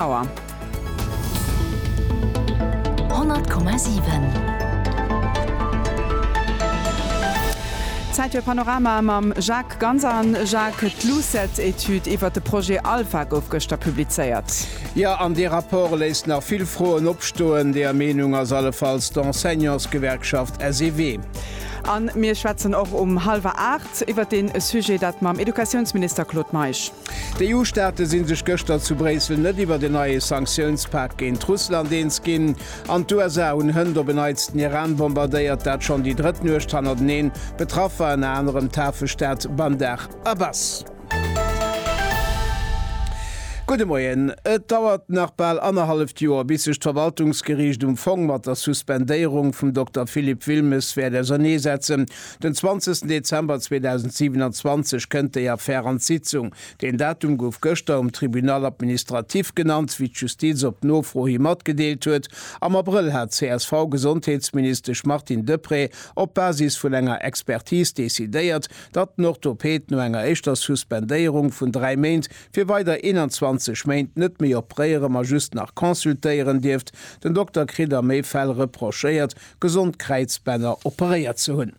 Auer. 100,7. Zäit fir Panorama mam Jacques Ganser. Jacques, d'LUCET-Etüd iwwert de Projet Alpha gouf gëschter publizéiert. Jo, an dee Rapport léisst nach vill Froen opstoen. Deeër Meenung ass allefalls d'Enseignantsgewerkschaft SEW. A mir schwätzen och um hallwer aacht iwwert dee Sujet, dat mam Educatiounsminister Claude Meisch. D'EU-Staate si sech gëschter zu Bréissel net iwwert en neie Sanktiounspak géint Russland eens ginn, an d'USA hunn hënt op en Neits den Iran bombardéiert, dat schonn déi drëtt Nuecht hannerteneen. Betraff war ënner anerem d'Hafestad Bandar Abbas. Gudde Moien. Et dauert nach bal annerhalleft Joer, bis sech d'Verwaltungsgeriicht um Fong mat der Suspendéierung vum Dokter Philippe Wilmes wäert ausernee setzen. Den 20 Dezember 2027 kënnt déi Affär an d'Sitzung. Deen Datum gouf gëschter um Tribunal administratif genannt, wéi d'Justiz op Nofro hi matgedeelt huet. Am Abrëll hat d'CSV-Gesondheetsministesch Martine Deprez op Basis vun enger Expertis decidéiert, datt den Orthopäd no enger éischter Suspendéierung vun dräi Méint fir weider 21 Méint net méi opréiere ma just nach consultéieren dierft. Den Dokter kritt a méi Fäll reprochéiert, gesond Kräizbänner operéiert ze hunn.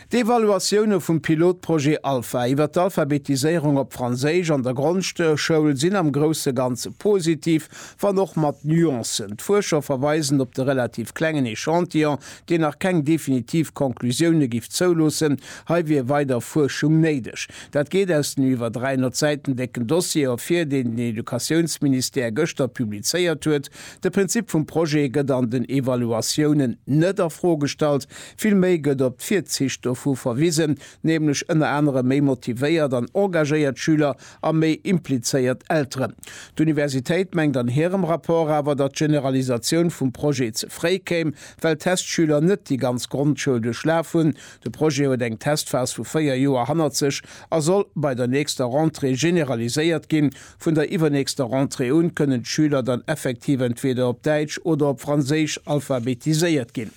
D'Evaluatioune vum Pilotprojet Alpha iwwer d'Alphabetiséierung op Franséisch an der Grondschoul sinn am grousse Ganze positiv, wann och mat Nuancen. D'Fuerscher verweisen op de relativ klengen Echantillon, deen nach keng definitiv Conclusioune giff zouloossen. Hei wier weider Fuerschung néideg. Dat geet aus dem iwwer 300 Säiten décken Dossier ervir, deen den Educatiounsministère gëschter publizéiert huet. De Prinzip vum Projet gëtt an den Evaluatiounen net a Fro gestallt, villméi gëtt op d'Virzicht dovu verwisen, nämlech ënner anerem méi motivéiert an engagéiert Schüler a méi implizéiert Elteren. D'Universitéit mengt an hirem Rapport awer, datt d'Generalisatioun vum Projet ze fréi kéim, well d'Testschüler net déi ganz Grondschoul duerchlaf hunn. De Projet huet eng Testphas vu véier Joer hannert sech a soll bei der nächster Rentrée generaliséiert ginn, Vun der iwwernächster Rentrée un kënnen d'Schüler dann effektiv entweeder op Däitsch oder op Franséisch alphabetiséiert ginn.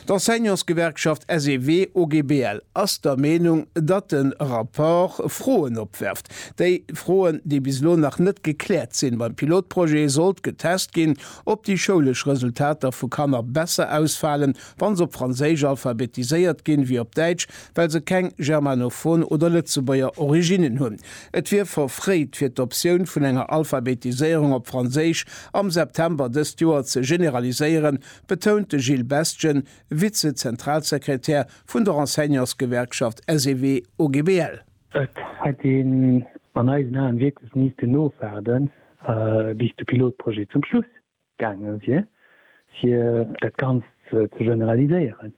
D'Enseignantsgewerkschaft SEW-OGBL ass der Meenung, datt de Rapport Froen opwerft. Déi Froen, déi bis elo nach net gekläert sinn, Beim Pilotprojet sollt getest ginn, ob déi schoulesch Resultater vu Kanner besser ausfalen, wann se op Franséisch alphabetiséiert ginn, wéi op Däitsch, well se keng germanophon oder lëtzebuerger Originnen hunn. Et wier verfréit, fir d'Optioun vun enger Alphabetiséierung op Franséisch am September dëst Joer ze generaliséieren, betount de Gilles Bestgen, Vize-Zentralsekretär vun der Enseignantsgewerkschaft SEW-OGBL. Et hätt een an eisen Aen wierklech miissten ofwaarden, bis de Pilotprojet zum Schluss Gaange wier, fir dat Ganzt ze generaliséieren.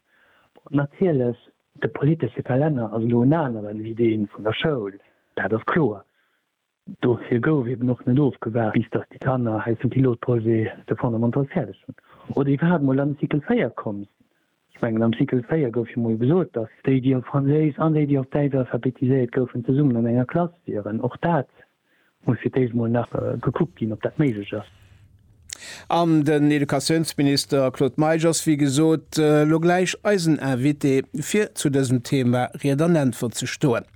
Natierlech, de politesche Kalenner ass elo en aneren wéi dee vun der Schoul, dat ass kloer. Dofir gouf eben och net ofgewaart, bis datt déi Kanner hei zum Pilotprojet de Fondamental fäerdeg hunn oder iwwerhaapt emol an de Cycle 4 komm sinn. Ech mengen am Cycle 4 gouf jo mol gesot, datt déi déi op Franséisch an déi déi op Däitsch alphabetiséiert goufen zesummen an enger Klass wieren. Och dat muss fir d'éischt mol nach gekuckt ginn, ob dat méiglech ass. An den Educatiounsminister Claude Meisch ass wéi gesot elo gläich eisen Invité fir zu dësem Thema Ried an Äntwert ze stoen.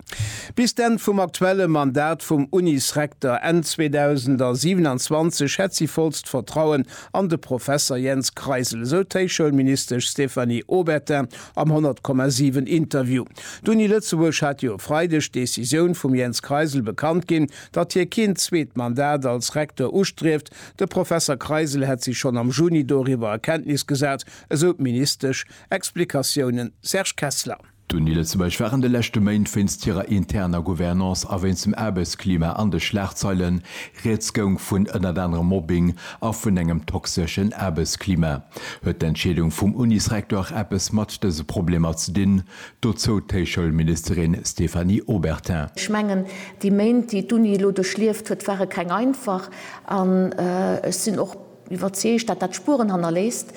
Bis d'Enn vum aktuelle Mandat vum Unisrekter Enn 2027 hätt si vollst Vertrauen an de Professer Jens Kreisel, esou d'Héichschoulministesch Stéphanie Obertin am 100,7 Interview. D'Uni Lëtzebuerg hat jo e Freideg d'Decisioun vum Jens Kreisel bekannt ginn, datt hie keen zweet Mandat als Rekter ustrieft. De Professer Kreisel hätt sech schonn am Juni doriwwer a Kenntnis gesat, esou d'Ministesch. Explikatiounen, Serge Kessler. D'Uni Lëtzebuerg war an de leschte Méint wéinst hirer interner Gouvernance a wéinst dem Aarbechtsklima an de Schlagzeilen. Rieds goung vun ënnert anerem Mobbing a vun engem toxeschen Aarbechtsklima. Huet d'Entscheedung vum Unisrektor eppes mat dëse Problemer ze dinn? Dozou d'Héichschoulministerin Stéphanie Obertin. Ech mengen, déi Méint, déi d'Uni elo duerchlieft huet, ware keng einfach an ech sinn och, Iwwerzeegt, dat dat Spueren hannerléisst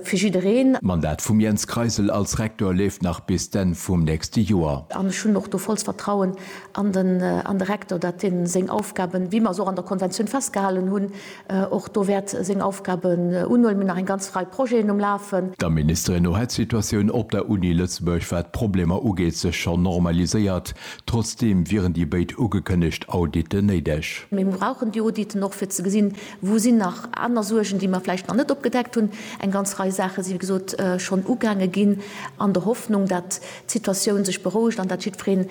fir jiddereen. D'Mandat vum Jens Kreisel als Rektor leeft nach bis d'Enn vum nächste Joer. An ech hunn och do vollst Vertrauen an de Rektor, dat deen seng Aufgaben, wéi mer se och an der Konventioun festgehalen hunn, och do wäert seng Aufgaben unhuelen. Mir hunn nach eng ganz Rei Projeten um Lafen. Der Ministerin no hätt d'Situatioun op der Uni Lëtzebuerg, wat d'Problemer ugeet, sech schonn normaliséiert. Trotzdeem wieren déi béid ugekënnegt Auditen néideg. Mir brauchen déi Auditen och fir ze gesinn, Wou sinn nach aner Suergen, déi mer vläicht nach net opgedeckt hunn? Eng ganz Rei Saache si wéi gesot schonn ugaange ginn, an der Hoffnung, datt d'Situatioun sech berouegt an datt jiddwereen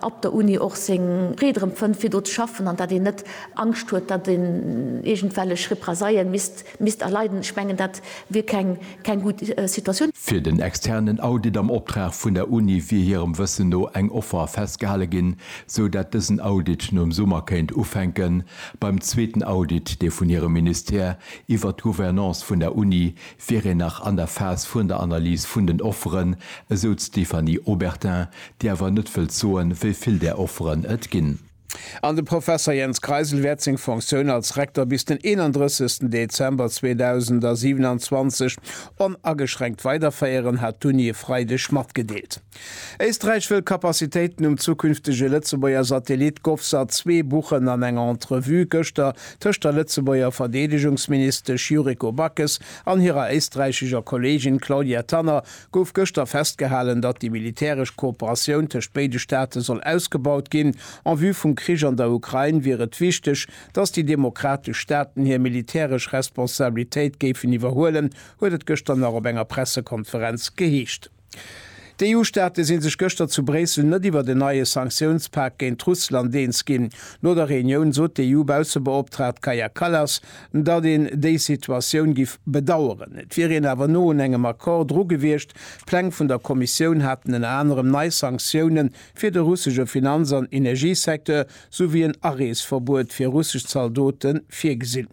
op der Uni och seng Freed erëm fënnt fir do ze schaffen an datt een net Angscht huet, datt een iergendwellech Represaillen misst erleiden. Ech mengen dat wier keng gutt Situatioun. Fir den externen Audit am Optrag vun der Uni wier hirem Wëssen no eng Offer festgehale ginn, sou datt dësen Audit nom Summer kéint ufänken, Beim zweeten Audit, dee vun hirem Ministère iwwert d'Gouvernance vun der Uni, wier een nach an der Phas vun der Analys vun den Offeren, esou d'Stéphanie Obertin, déi awer net wëllt soen, wéi vill där Offeren et ginn. An de Professer Jens Kreisel wäert seng Fonctioun als Rektor bis den 31 Dezember 2027 onageschränkt weiderféieren, hat d'Uni e Freideg matgedeelt. Éisträich wëll Capacitéiten um zukünftege Lëtzebuerger Satellit Govsat 2 buchen an enger Entrevue gëschter tëscht der Lëtzebuerger Verdeedegungsministesch Yuriko Backes an hirer éisträichescher Kolleegin Claudia Tanner gouf gëschter festgehalen, datt déi militäresch Kooperatioun tëscht béide Staate soll ausgebaut ginn. En vue vum Krich an der Ukrain wier et wichteg, datt déi demokratesch Staaten hir militäresch Responsabilitéit géifen iwwerhuelen, huet et gëschter nach op enger Pressekonferenz geheescht. D'EU-Staate si sech gëschter zu Bréissel net iwwert en neie Sanktiounspak géint Russland eens ginn. No der Reunioun sot d'EU-Baussebeoptraagt Kaja Kallas, datt een déi Situatioun giff bedaueren. Et wier een awer no un engem Accord dru gewiescht. D'Pläng vun der Kommissioun haten ënner anerem nei Sanktioune fir de russesche Finanz an Energiesecteur souwéi en Areesverbuet fir russesch Zaldote virgesinn.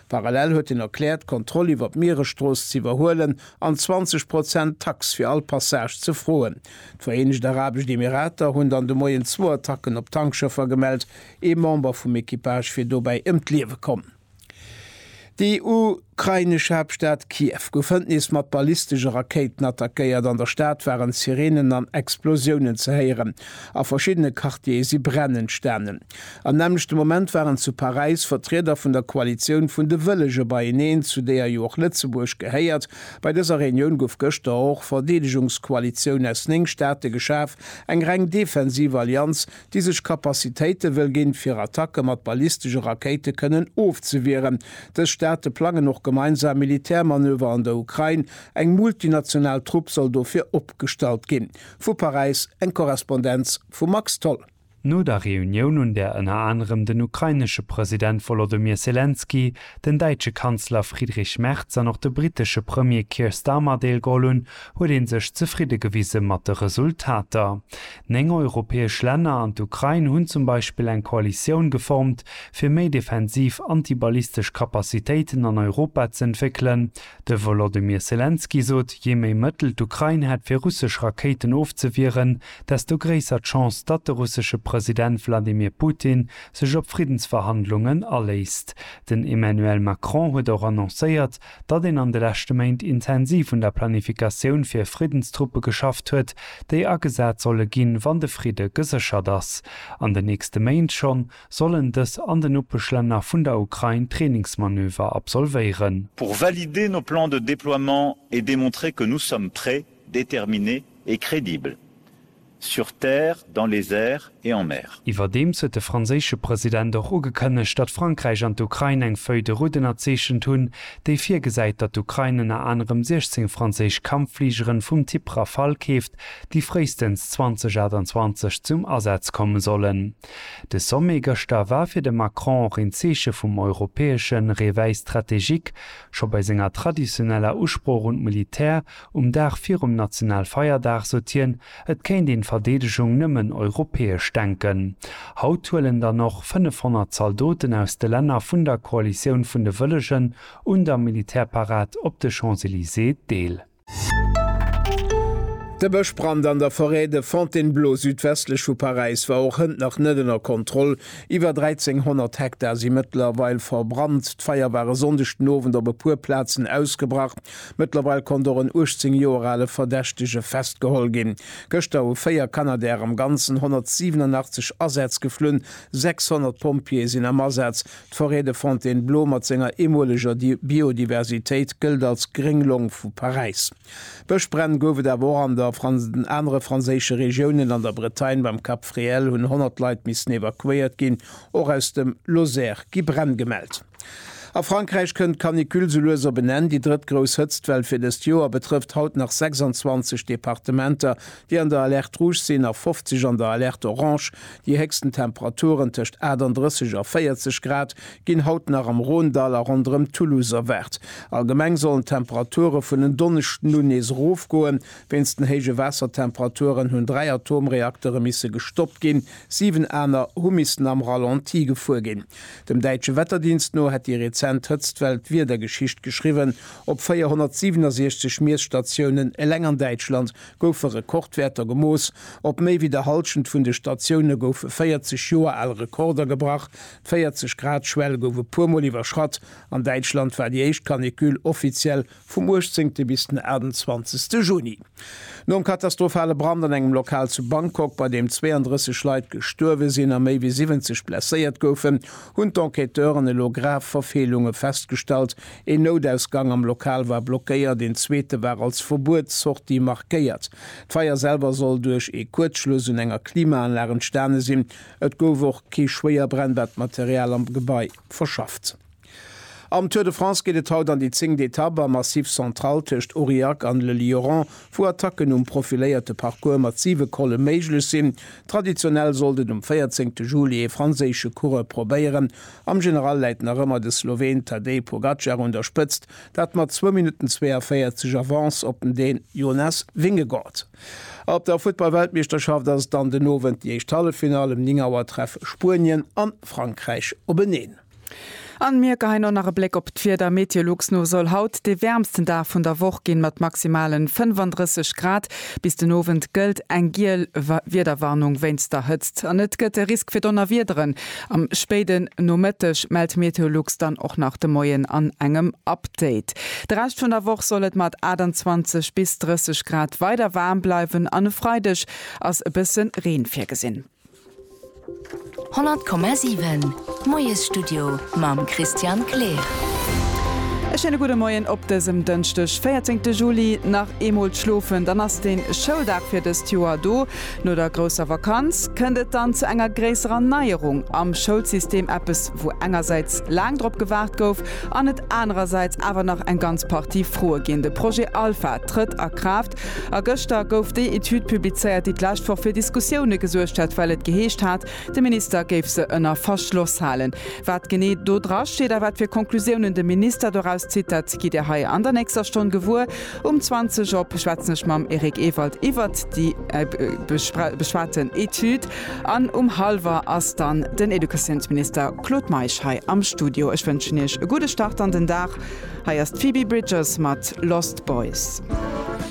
Parallel huet hien erkläert, d'Kontroll iwwer d'Mieresstrooss ze iwwerhuelen an 20 Prozent Tax fir all Passage ze froen. D'Vereenegt Arabescht Emirater hunn dann de Moien zwou Attacken op Tankschëffer gemellt, ee Member vum Equipage wier dobäi ëm d'Liewe komm. Déi ukrainesch Haaptstad Kiew gouf hënt nees mat ballistesche Rakéiten attackéiert. An der Stad waren Sireenen an Explosiounen ze héieren. A verschiddene Quartiere si Bränn entstanen. Am nämmlechte Moment waren zu Paräis Vertrieder vun der Koalitioun vun de Wëllege beieneen, zu deeër jo och Lëtzebuerg gehéiert. Bei dëser Reunioun gouf gëschter och Verdeedegungskoalitioun aus néng Staate geschaf, eng reng defensiv Allianz, déi sech Kapazitéite wëll ginn, fir Attacke mat ballistesche Rakéite kënnen ofzewieren. Dës Staate plangen och gemeinsam Militärmanöver an der Ukrain. Eng multinational Trupp soll dofir opgestallt ginn. Vu Paräis eng Korrespondenz vum Max Tholl. No der Reunioun, un där ënner anerem den ukrainesche President Wolodymyr Selenskyj, den däitsche Kanzler Friedrich Merz an och de brittesche Premier Keir Starmer deelgeholl hunn, huet ee sech zefridde gewise mat de Resultater. Néng europäesch Länner an d'Ukrain hunn zum Beispill eng Koalitioun geformt, fir méi defensiv antiballistesch Capacitéiten an Europa ze entwéckelen. De Wolodymyr Selenskyj sot, jee méi Mëttel d'Ukrain hätt fir russesch Rakéiten ofzewieren, desto gréisser d'Chance, datt de russesche President Wladimir Putin sech op Friddensverhandlungen aléisst. Den Emmanuel Macron huet och annoncéiert, datt een an de leschte Méint intensiv un der Planifikatioun fir Friddenstruppe geschafft huet, déi agesat solle ginn, wann de Fridde geséchert ass. An den nächste Méint schonn sollen dës an den Nopeschlänner vun der Ukrain Trainingsmanöver absolvéieren. Pour valider nos plans de déploiement et démontrer que nous sommes prêts, déterminé et crédible, sur terre, dans les airs et en mer. Iwwerdeems huet de franséische President och ugekënnegt, datt Frankräich an d'Ukrain eng Feuille de route ënnerzeechent hunn, déi virgesäit, datt d'Ukrain ënner anerem 16 franséisch Kampffligeren vum Typ Rafale keeft, déi fréistens 2028 zum Asaz komme sollen. De Sommet gëschter war fir de Macron och een Zeeche vum europäesche Réveil stratégique. Scho bei senger traditioneller Usprooch un d'Militär Um Dag virum Nationalfeierdag sot hien, et kéint een d'Verdeedegung nëmmen europäesch denken. Haut huelen dann och 500 Zaldoten aus de Länner vun der Koalitioun vun de Wëllegen un der Militärparad op de Champs-Elysées deel. De Bëschbrand an der Forêt de Fontainebleau südwestlech vu Paräis war och hënt nach net ënner Kontroll. Iwwer 1.300 Hektar si mëttlerweil verbrannt. D'Feier war e Sonndeg den Owend op e puer Plazen ausgebrach. Mëttlerweil konnt och en 18 Joer ale Verdächtege festgeholl ginn. Gëschter hu véier Canadair am Ganzen 187 Asätz geflunn, 600 Pompjeeë sinn am Asaz. D'Forêt de Fontainebleau mat senger eemoleger Biodiversitéit gëllt als gréng Long vu Paräis. Bëschbränn gouf et awer och an der anere franséische Regiounen. An der Bretagne beim Cap Fréhel hunn 100 Leit missen evakuéiert ginn. Och aus dem Lozère gi Bränn gemellt. A Frankräich kënnt d'Canicule sou lues op en Enn. Déi drëtt grouss Hëtztwell fir dëst Joer betrëfft haut nach 26 Departementer, déi an der Alerte rouge sinn, a 50 an der Alerte orange. Déi héchsten Temperaturen, tëscht 38 a 40 Grad, ginn haut nach am Rhônedall a ronderëm Toulouse erwaart. Allgemeng sollen d'Temperature vun en Donneschden un nees erofgoen. Wéinst den héije Waassertemperaturen hunn dräi Atomreaktere misse gestoppt ginn, siwen aner hu missen am Ralenti gefuer ginn. Dem däitsche Wetterdienst no hätt déi rezent Hëtztwell d'Wiedergeschicht geschriwwen. Op 467 Miesstatiounen eleng an Däitschland goufe Rekordwäerter gemooss. Op méi wéi der Hallschent vun de Statioune goufe 40 Joer al Rekorder gebrach. D'Véierzeg-Grad-Schwell gouf e puermol iwwerschratt. An Däitschland war déi éischt Canicule offiziell vum 18 bis den 28 Juni. Nom katastrophale Brand an engem Lokal zu Bangkok, bei deem 32 Leit gestuerwe sinn a méi wéi 70 blesséiert goufen, hunn d'Enquêteuren elo grav Verfeelunge festgestallt, Een Noutausgang am Lokal war blockéiert, een zweete war als Verbuets-Sortie markéiert. D'Feier selwer soll duerch ee Kuerzschluss un enger Klimaanlag entstane sinn. Et gouf och kee Schwéierbränn, wat d'Material am Gebai verschafft. Am Tour de France geet et haut an déi zéngt Etapp am Massif Central tëscht Aurillac an Le Lioran, wou Attacken um profiléierte Parcours mat siwe Colle méiglech sinn. Traditionell soll den um 14 Juli ee franséische Coureur probéieren. Am General läit nach ëmmer de Sloween Tadej Pogacar un der Spëtzt, dat mat zwou Minutten 42 Avance op den Dän Jonas Vingegaard. Op der Futtball-Weltmeeschterschaft ass dann den Owend déi éischt Halleffinall. Um 9 Auer treffe Spuenien an Frankräich openeen. An mir geheien och nach e Bléck op d'Wieder. Meteolux no soll haut de wäermsten Dag vun der Woch ginn, mat maximalen 35 Grad. Bis den Owend gëllt eng giel Wiederwarnung wéinst der Hëtzt an et gëtt e Risk fir Donnerwiederen am spéiden Nomëtteg, mellt Meteolux dann och nach de Moien an engem Update. De Rescht vun der Woch soll et mat 28 bis 30 Grad weider waarm bleiwen an e Freideg ass e bësse Reen virgesinn. 100,7 Moiesstudio mam Christian Kleer. E schéine gudde Moien op dësem Dënschdeg, 14 Juli. Nach eemol d'Schlofen, dann ass de Schouldag fir dëst Joer do. No der grousser Vakanz kënnt et dann zu enger gréisserer Neierung am Schoulsystem, eppes wou engersäits laang drop gewaart gouf an et anerersäits awer nach eng ganz Partie Froe ginn. De Projet Alpha trëtt a Kraaft. A gëschter gouf déi Etüd publizéiert, déi d'lescht Woch fir Diskussioune gesuergt hat, well et geheescht hat, de Minister géif se ënner Verschloss halen. Wat genee do dra steet a wat fir Conclusiounen de Minister doraus zitt, dat gitt Dir hei an der nächster Stonn gewuer. Um 20 op schwätzen ech mam Eric Ewald iwwert déi beschwaten Etüd an um hallwer ass dann den Educatiounsminister Claude Meisch hei am Studio. Ech wënschen Iech e gudde Start an den Dag. Hei ass d'Phoebe Bridgers mat Lost Boys.